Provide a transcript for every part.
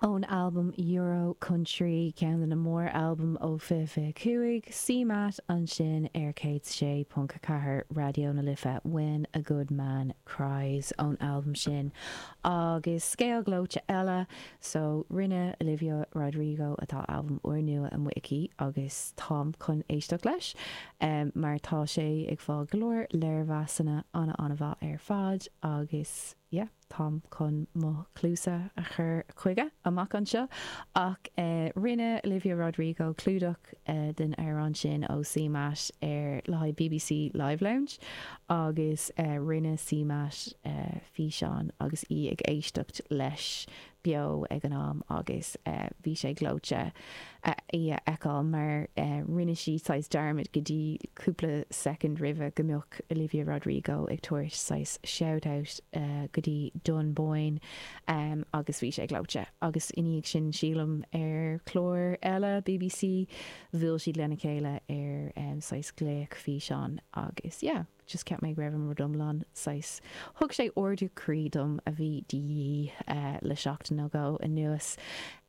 Ón albam Euro Country, ceann de na mór-albaim ó 2025, CMAT ansin ar 106.4 Raidió na Life, When a Good Man Cries ón albam sin agus scéal gleoite eile so rinne Olivia Rodrigo atá albam úrnua amuigh aici agus táim chun éisteacht leis mar tá sé ag fáil go leor léirmheasanna ana-ana-mhaith ar fad agus yeah. Táim chun mo chluasa a chur chuige amach anseo ach rinne Olivia Rodrigo clúdach den amhrán sin ó CMAT ar le haghaidh bbc Live Lounge agus rinne CMAT físeán agus í ag éisteacht leis beo ag an am agus bhí sé gleoite í a fheiceál mar rinne sí saghas dearmad go dtí cúpla soicind roimhe go mbeadh Olivia Rodrigo ag tabhairt saghas shout out go dtí Dunboyne agus bhí sé gleoite agus i ndiaidh sin sílim ar clár eile bbc bhuail siad lena chéile ar saghas glaoch físeán agus yeah. just cheap mé go raibh an rud iomlán saghas thug sé ardú croí dom a bhí de dhíth le seachtain nó dhó anuas.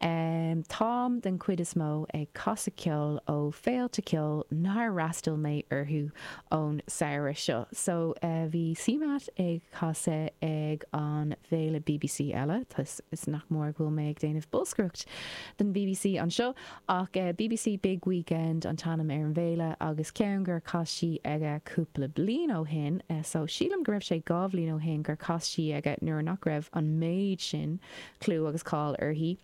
Táim den chuid is mó ag casadh ceoil ó féilte ceoil nár fhreastail mé orthu ón samhradh seo so bhí CMAT ag casadh ag an bhféile bbc eile tá sé nach mór go bhfuil mé ag déanamh bolscaireacht don bbc anseo Ach bbc Big Weekend an t-ainm ar an bhféile agus ceann gur chas sí aige cúpla bliain ó shin so sílim go raibh sé dhá bhliain ó shin gur chas sí aige nuair nach raibh an méid sin clú agus cáil uirthi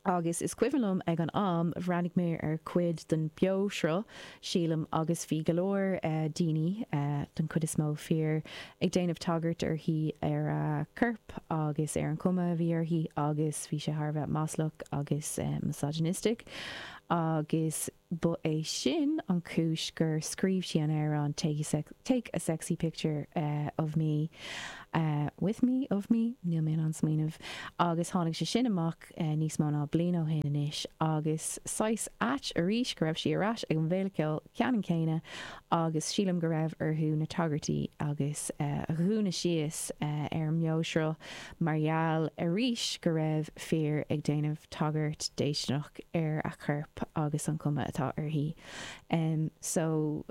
agus is cuimhin liom ag an am bhreathnaigh mé ar chuid den beo-shruth sílim, agus bhí go leor daoine, den chuid is mó fir, ag déanamh tagairt uirthi ar a corp agus ar an chuma a bhí uirthi agus bhí sé thar a bheith maslach agus misogynistic agus ba é sin an chúis gur scríobh sí an amhrán Take a Sexy Picture of Me, with me, of me, níl mé in ann smaoineamh, agus tháinig sé sin amach. níos mó ná bliain ó shin anois agus saghas ait arís go raibh sí ar ais ag an bhféile ceoil ceannann céanna agus sílim go raibh orthu na tagairtí agus a dhúnadh síos ar an mbeoshruth mar gheall arís go raibh fir ag déanamh tagairt déistineach ar a corp agus an chuma atá uirthi. So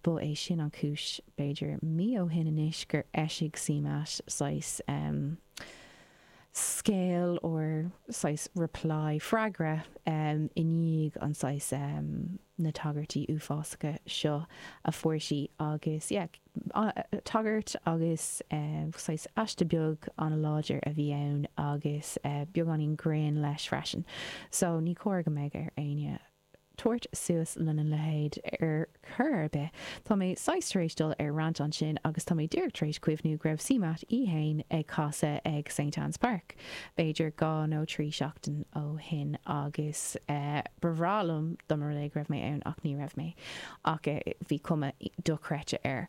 ba é sin an cúis b'fhéidir mí ó shin anois gur eisigh CMAT saghas. scéal nó saghas reply, freagra, em, i ndiaidh an saghas, em, na tagairtí uafásacha seo a fuair sí agus, yeah, tagairt agus, eh, saghas aiste beag an-láidir a bhí ann agus, eh, beagáinín grinn leis freisin. So, ní cóir go mbeadh ar éinne. tabhairt suas lena leithéid ar chor ar bith. Tá mé saghas tar éis dul ar rant ansin agus tá mé díreach tar éis cuimhniú go raibh CMAT í fhéin ag casadh ag Saint Anne's Park b'fhéidir dhá nó trí seachtain ó shin agus ba bhreá liom dá mba rud é go raibh mé ann ach ní raibh mé ach bhí cuma dochreidte air.